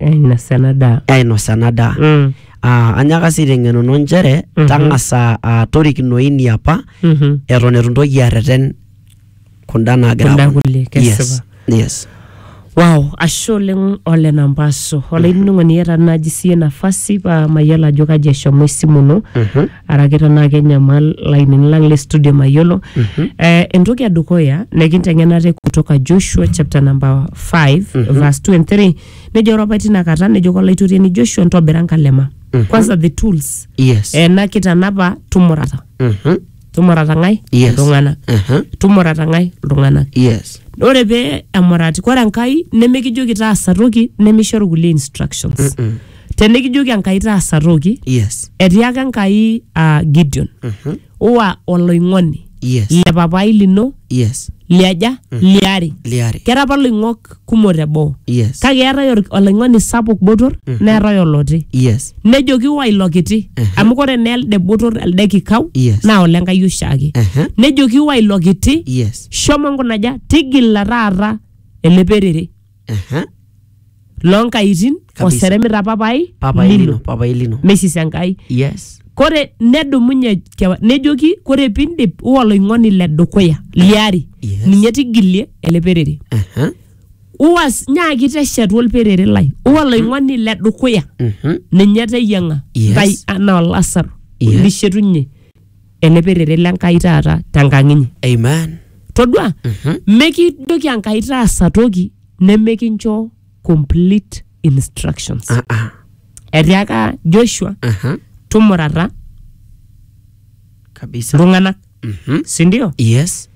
Ainosa ena daa. ainosa ena daa. Mm. Ah, anyaka sii aiteng'enuno nchere Mhm. tang'asa ah, torikino ini apa Mhm. eton eitu intoki arreten kunda naagira Kunda aponu. kulie, kesipa. yes. yes. Wow, ashe oleng ole nampaso. Olainining'oni iyata naaji siye nafasi paa mayiolo ajo kaji eshomo esimu ino. Mhm. araki tenaa kenyamal lainini lang le studio mayiolo eh, entoki edukuya nekinteng'ena ate kutoka joshua chapter number 5 verse 2 and 3 nejo ore apa tina kata nejo kolaitoriani joshua ntobira nkalema kwanza the tools yes eh, na kitanapa tumurata Mhm. tumurata ng'ae Yes. iltung'anak Mhm. tumurata ng'ae iltung'anak yes ore pee emurati kore enkai nemikijoki taasa toki nemishoru kulie instructions tenikijoki enkai taasa toki yes etiaka enkai uh, gideon Mhm. uwa oloing'oni yes le papai lino yes liaja liare liare kera apa loing'ok kumok teboo yes kake eetae or- oloing'oni sapuk botor neetae oloti yes nejoki wa ilo kiti Mhm. amu kore naa elde botor elde kikau Yes. naa olenkai oshiake Ehe. nejoki wa ilo kiti yes shomo nkunaja tigila taata ele perere Aha. loo nkaitin Kabisa. oseremita papai papai lino lino papai lino mesis enkai yes kore nedumunye kewa- nejoki kore pindip uwa oloing'oni le dukuya liari Yes. ninye tigilie ele perere Aha. uwas nyaaki teshetu olperere lai uwa oloing'oni le dukuya Mhm. ninye teyiang'a Yes. ntai anaa olasaro Yes. lishetunye ele perere le Nkai taata tenkang inyi. Amen. Todua, mekijoki Enkai taasa toki nemekincho complete instructions. Ah, ah. Etiaka Joshua, Aha. tumurata Kabisa. iltung'anak, Mhm. si ndio? Yes.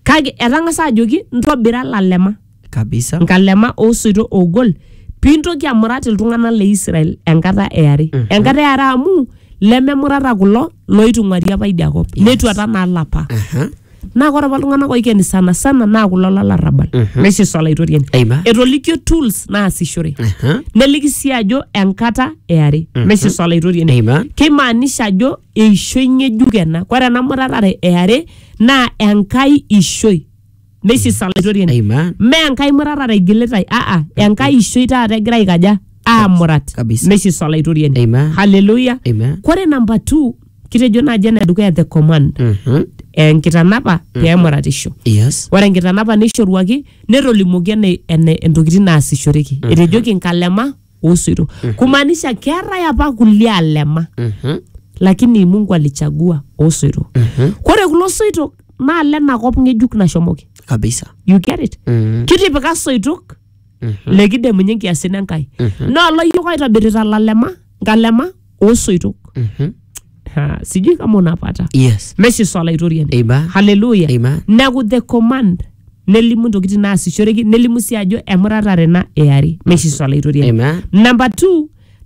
Kake etang'asa ajoki ntobira lalema. kabisa nkalema oosoito oogol piintoki amurat iltung'anak le Israel enkata e are enkata e are amu lememurata kulo looitung'uari apa idia kop netuata naa lapa Aha. naa ore apa iltung'anak oikeni sana sana naa kulo lolarrabal naisisa olaitoriani Aima. etolikio tools naasishore Aha. neliki sii ajo enkata e are naisisa olaitoriani Aima. keimaanisha ajo eishoi ng'ejuk ena ore ena muratare e are naa enkai ishoi meisisa laitoriani Amen. mme enkai muratare igilitai aa enkai ishoi taata egira aikaja aamurat Kabisa. meisisa laitoriani Amen. haleluya Amen. kore namba t kitejo naaji ena edukuya the command Mhm. enkitanapa peemuratisho Yes. ore enkitanapa neishoruaki netolimuoki ene- ene- entokitin naasishoreki etejoki nkalema osoito kumaanisha keetae apa kulie alema Mhm. lakini mungu alichagua osoito kore kulo soitok naa lena kop ng'ejuk nashomoki kabisa you get it Mhm. kitipika soitok lekidemunye nkiasin enkai naa oloyiok aitobirita lalema nkalema osoitok Mhm. Ah, sijui kama unapata yes meshi swala itoriani Amen. haleluya Amen. neku the command nelimu ntokitin naasishoreki nelimu sii ajo emuratare na eari meshi swala itoriani Amen. namba t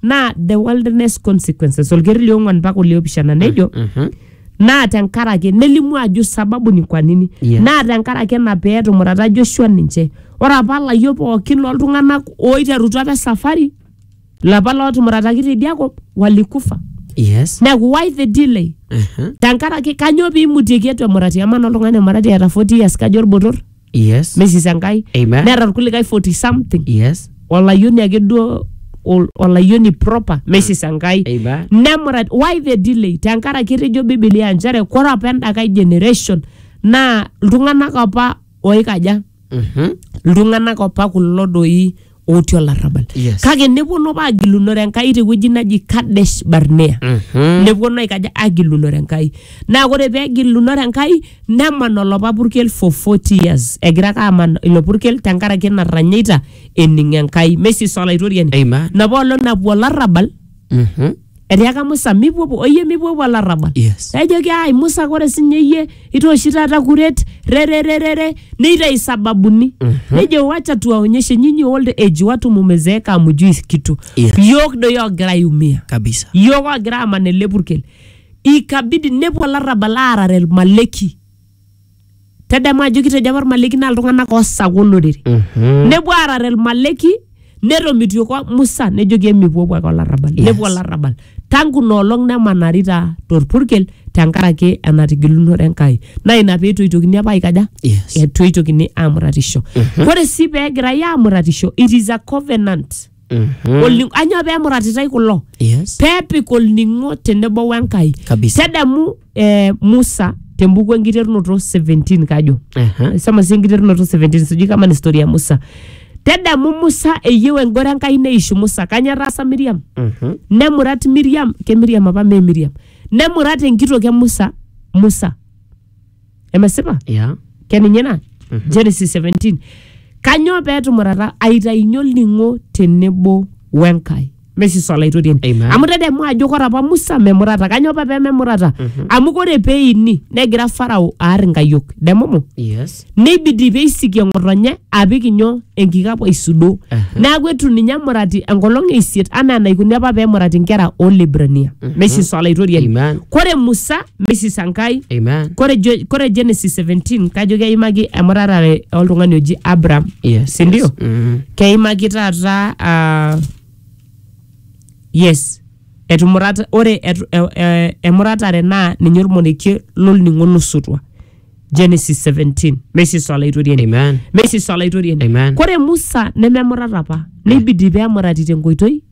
naa the wilderness consequences olkeri liong'uan mpaka oliopishana nejo Mhm. naa tenkaraki nelimu ajo sababu ni kwa nini Yeah. naa tenkaraki ena pee etumurata joshua ninche ore apa layiok pookin loltung'anak oiterutua apa esafari lapa lootumurataki tidia kop walikufa yes neeku why the delay Aha. tenkaraki kanyoo piimutieki etu emurati amaa naa oltung'ani emurati eeta 40 years kajo olbotor yes mesis enkai Amen. neeta irkulikae 40 something yes olayioni ake duo ol- olayioni proper mesis enkai Amen. nemurat why the delay tenkaraki etejo bibilia nchere kore apa endakai generation naa iltung'anak apa oikaja iltung'anak opa kulo doi otii olarrabal Yes. kake neponu apa agilunore enkai tewueji naji kadesh barnea neponu aikaja agilunore enkai naa ore pee egilunore enkai neman olopa purkel for 40 years egira ake aman ilo purkel tenkaraki natanyaita ening enkai mesis olaitoriani Amen. napa olong napuo olarrabal Mhm. etiaka musa mipuopuo oyie mipuopuo olarrabal Yes. ejoki ai musa kore sinye iyie itooshi taata kuret rerererere neitayu sababuni nejo wacha tuwaonyeshe nyinyi old age watu mumezeeka amujui kitu Yes. yook doi ogira aiumia kabisa yook ogira aman ele purkel ikabidi nepuo olarrabal aarare ilmaleki tadamu ajo kitejo apa irmaleki naa iltung'anak oosaka olorere Mhm. nepuo aarare irmaleki netomitioko musa nejoki emipuopuo ake olarrabal Yes. nepuo olarrabal tangu noolong nemanarita torpurkel tenkaraki enatigilunore enkai naa ina pee etoitokini apa aikaja Yes. etoitokini aamuratisho ore sii pee egirai aamuratisho it is a covenant Mhm. Olning- anyoo pee emuratitai kulo Yes. peepik olning'o tenebo wenkai Kabisa. tadamu eh, musa tembuku enkiterunoto 17 kajo Aha. sema si enkiterunoto 17 sijui kama ni story ya musa tadamu musa eyieu engoro enkai neishu musa kanya etaasa miriam Mhm. nemurat miriam ke miriam apa mee miriam nemurat enkitok e musa musa emesipa ya keninye ina genesis 17 kanyoo peetumurata aitainye olning'o tenebo wenkai mesiso olaitoriani Amen. amu tadamu ajo kore apa musa memurata kanyoo apa pememurata amu kore peini negira farao aar inkayiok demumu yes neibidi peisikie ng'otonye apik inyoo enkikapu aisudoo Aha. neaku etu ninye emurati enkolong e isiet anaa enaikuni apa pemurati nkera olebrania mesiso olaitoriani Amen. kore musa Mrs. Sankai. Amen. Kore, jo, kore Genesis 17 kajo keimaki emurarare oltung'ani oji Abraham. Yes. Si ndio? yes. Mm. Keimaki taata ah, yes etumurata ore etu, e, e, emuratare naa ninye olmonekie lolning'o losotua Genesis 17 Mrs. Olaitoriani. Amen. Mrs. Olaitoriani. Amen. Kore Musa nememurata apa neibidi pee emurati tenkoitoi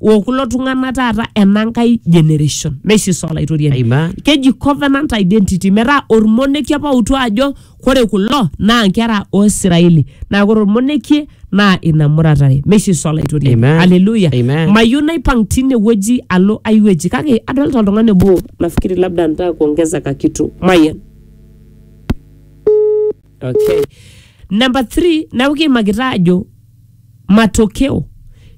okulo tung'ana taata enankai generation naisisa olaitoriani Amen. keji covenant identity metaa ormonekie apa outu ajo kore kulo naa nkera o Israeli naa kore ormonekie naa ina muratare meisisa olaitoriani Amen. haleluya Amen. mayieu naipang tine wueji alo ai wueji kake adolta oltung'ani obo nafikiri labda ntaa kuongeza kakitu mayian okay. namba 3 neeku kiimakita ajo matokeo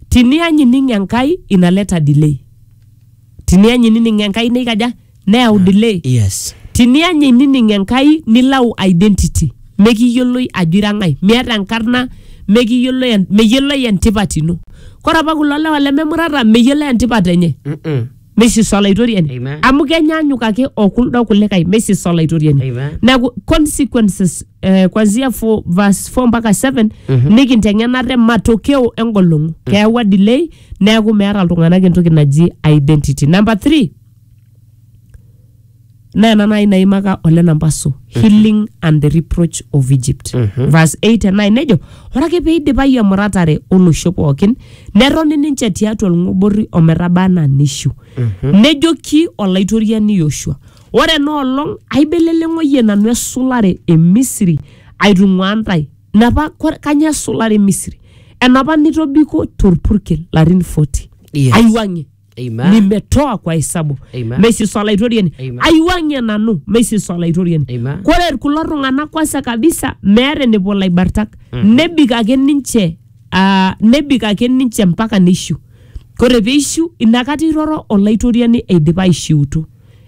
tinianyinining enkai inaleta delay tinianyinining enkai neikaja neyau delay yes tinianyinining enkai nilau identity mekiyioloi ajo ira ng'ae miata enkarna mekiyioloi en- meyioloi entipat ino kore apa kulo lewa lememurata meyiolo entipat enye Mm-mm. Mrs. Olaitoriani. Amen. Amu kenyaanyuk ake o kuldo kulikae Mrs. Olaitoriani. Amen. Neaku consequences eh, kuanzia fo- verse 4 mpaka 7 nikinteng'ena te matokeo engolong'u. Keyawua delay neaku meeta iltung'anak entoki naji identity. Number 3 naa ena nai naimaka ole nampaso healing and the reproach of egypt verse 8 and 9 nejo ore ake peidipayu emuratare olosho pookin netoni ninche tiatua olng'oborri ometaba anaa nishiu nejoki olaitoriani yoshua ore ena olong aibeleleng'oyie nanu esulare e misri aitung'uaa ntae napa kore- kanyoo esulare e misri enapa nitobiko torpurkel larin 40 Yes. aiwuang'ie Amen. nimetoa kwa hesabu Amen. meisiso olaitoriani Amen. aiwang'ie nanu meisiso olaitoriani Amen. kore kulo tung'anak kwanza kabisa meeta enepuo laibartak nebik ake ninche ah, nebik ake ninche mpaka neishiu kore peishiu inakata iroro olaitoriani eidipa aishiutu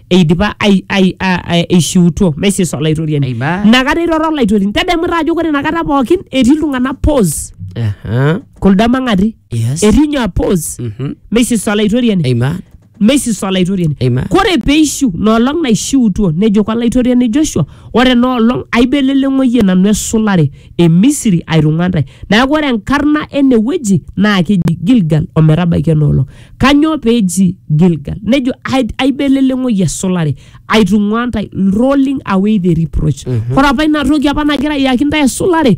eidipa ai- ai- a- a- eishiutuo meisiso olaitoriani Amen. inakata iroro olaitoriani tadamu taa ajo kore inakata pookin etii iltung'anak pause Aha. kulda mang'ati Yes. etii nyoo apos Mhm. meisisa olaitoriani Amen. meisisa olaitoriani Amen. kore peishiu noolong naishiutuo nejoki olaitoriani joshua ore enoolong aibeleleng'oyie nanu esulare e misiri aitung'ua ntae neaku ore enkarna ene wueji naa keji gilgal ometabaiki enoolong kanyoo peeji gilgal nejo "Ai- aibeleleng'oyie esulare aitung'ua ntae rolling away the reproach ore apa ina toki apa nagira ayaki ntae esulare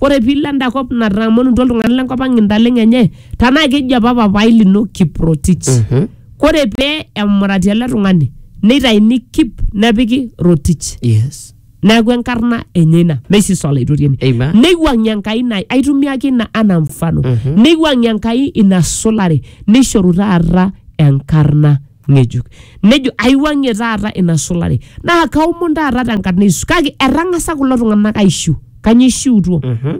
Ore piilo enda kop natang'amutua iltung'anak lenkop ang' intaleng'o enye tenaa keji apa papaai lino Kiprotich. Mhm. Ore pee emurati ele tung'ani neitaini Kip nepiki Rotich. Yes. Neeku enkarna enye ina. Meisisa Olaitoriani. Amen. Neiwuang'ie Enkai ina, aitumiaki ina anaa mfano. Neiwuang'ie Enkai ina sulare neishoru taata enkarna ng'ejuk nejo aiwuang'ie taata ina sulare naa kaomon taata tenkarna Yesu kake etang'asa kulo tung'anak aishiu kanyio ishiutuo Mhm.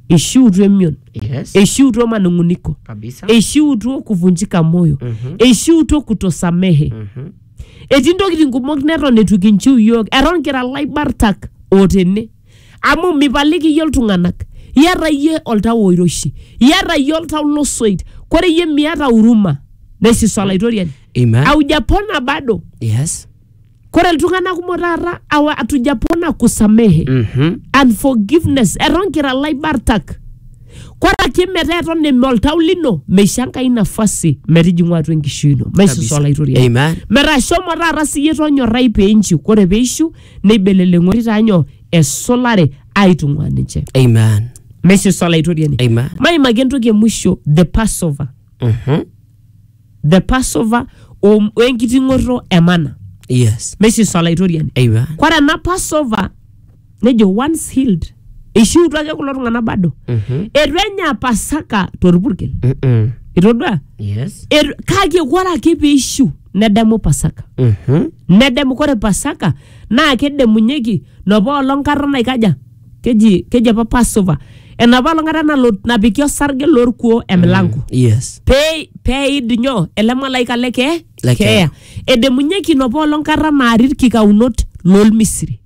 ishiutuo emion Yes. eishiutuo manung'uniko Kabisa. eishiutuo kuvunjika moyo Mhm. eishiutuo kutosamehe Mhm. etii ntokitin kumok neton etu kinchiu yiok eton kira laibartak otene amu mipaliki iyie iltung'anak iyata iyie oltau oiroshi iyata iyie oltau losoit kore iyie miata huruma nesisu olaitoriani Amen. aujapona bado Yes. kore iltung'anak kumok taata awa atujapona kusamehe Mhm. unforgiveness eton kira laibartak kore ake metaa eton eme oltau lino meisho enkai nafasi metijing'u atua enkishui ino maisusu Kabisa. olaitoriani Amen. metaa shomo taata siyie tonyorrai piinchiu kore piishiu neibeleleng'ori taa nyoo esulare aitung'uaa ninche Amen. mesis olaitoriani Amen. maimaki entoki emusho the passover Mhm. the passover o- wenkiting'oto emana Yes. mesis olaitoriani Amen. kore ena passover nejo once healed eishiutua ake kulo tung'anak bado Mhm. eitu enya pasaka torpurkel Mm-mm. itodua Yes. Eitu- kake ore ake peishiu nedamu pasaka Mhm. nedamu kore pasaka naa kedamunyeki nopa olong kata naikaja keji keji apa passover enapa olong kata nalo napiki osarge lorkuo emilango Yes. pee peid nyoo ele malaika le kee Le keeya. keeya edamunyeki nopa olong kata naari irkikaunot lolmisri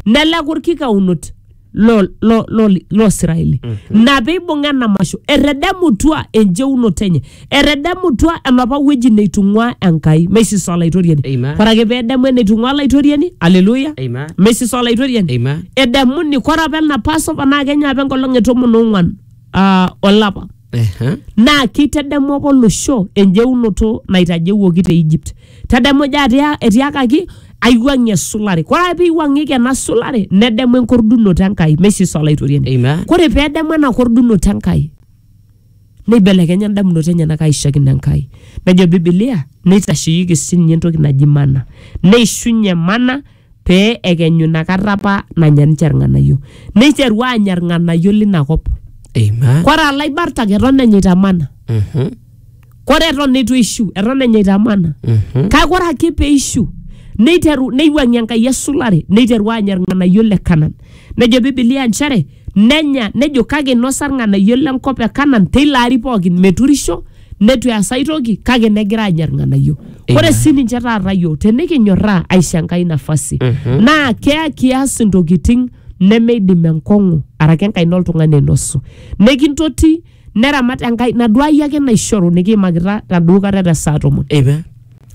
nelaku ilkikaunot lo, lo, lo, lo Israeli mm-hmm. na peibung'a ena masho etedemutua enjeunoto enye etedemutua enapa wueji neitung'ua Enkai meisisa olaitoriani Amen. ore ake pedemu eneitung'ua olaitoriani aleluya Amen. meisisa olaitoriani Amen. edemuni kore apa ena Passover naa kenya apa enkolong e tomon ong'uan uh, olapa Ehe. naa keitadamu apa olosho enjeunoto naitajeuoki te Egypt. Tadamu ajo atia- etiakaki aiwuang'ie esulare. Kore ake peiwuang'ieki ena sulare nedamu enkordunoto Enkai, meisisa Olaitoriani. Amen. Kore pedamu ena kordunoto Enkai neibelekenya indamunot enyenak aishakino Enkai. Nejo Bibilia neitasheyieki sii ninye entoki naji mana. Neishunye mana pee ekenyu ina kata apa nanya ninche irng'anayio neiteru aanya irng'anayio lina kop Amen. kore alaibartak eton enyaita mana Mhm. kore eton eitu eishu eton enyaita mana Mhm. kake ore ake peishu neiteru neiwuang'ie enkai esulare neiteru aanya irng'anayio le kanan nejo bibilia nchere Nenya, nejo kake inosa ilng'anayio le nkop e Kanan teilo ari pookin meturisho neitu eas ai toki kake negira aanya ilng'anayio. Ore sii ninche taata iyiook tenikinyorraa aisho Enkai nafasi naa keya kias intokitin nemeidim enkong'u araki enkaina oltung'ani ainosu. Nekintoti neramat enkai naduai ake naishoru nikiimakita taduo kata te saa tomon Eipa.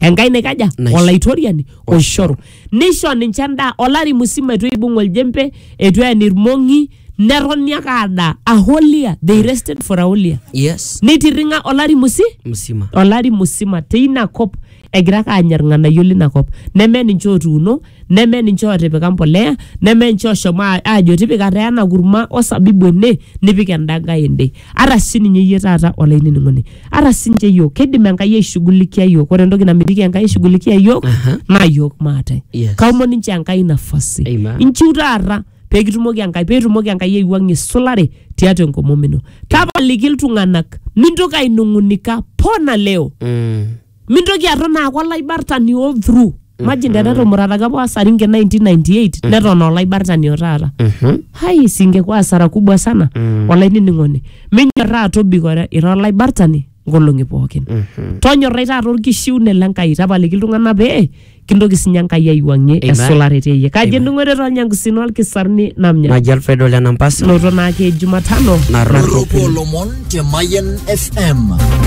enkai naikaja Naisho- olaitoriani oishoru nisho ninche endaa olari musima etu eibung oljempe etu ean irmong'i netoni ake adaa aholia they rested for aholia Yes. neitirring'a olari musi Msima. olari musima teina kop egira ake aanya irng'anayio lina kop neme ninche otuuno neme ninche otipika mbolea neme ninche oshomo a- aajo tipika taa ena kurma osabibu ene nipik enda nkae ende ata sininye iyie taata olainining'oni ata sinche yiok kidim enkai aishughulikia yiok ore entoki namitiki enkai aishughulikia yiok Aha. naa yiok maate Yes. kaomon ninche enkai nafasi Amen. inchiu taata peekitumoki enkai peetumoki enkai aiwuang'ie isulare tiatua enkomom ino tapaliki iltung'anak mintoki ainung'unika pona leo Mm. mintoki aton aaku olaibartani all through imagine tenetumurataki apa wasaringe 1998 neton aa olaibartani o taata Mhm. hai singekuwa hasara kubwa sana Mm. olainining'oni minyorraa tobikore ira olaibartani nkolong'i pookin Mhm. tonyorrai taata orkishiune le Nkai tapaliki iltung'anak pee kintoki sinye Enkai aiwuang'ie Amen. esulare teyie kaji ening'ore tolnyangusin olkisarni namnya Naji Alfredo Lenampasa. noto naake Jumatano Narropo. Ropo Lomon te Mayan FM.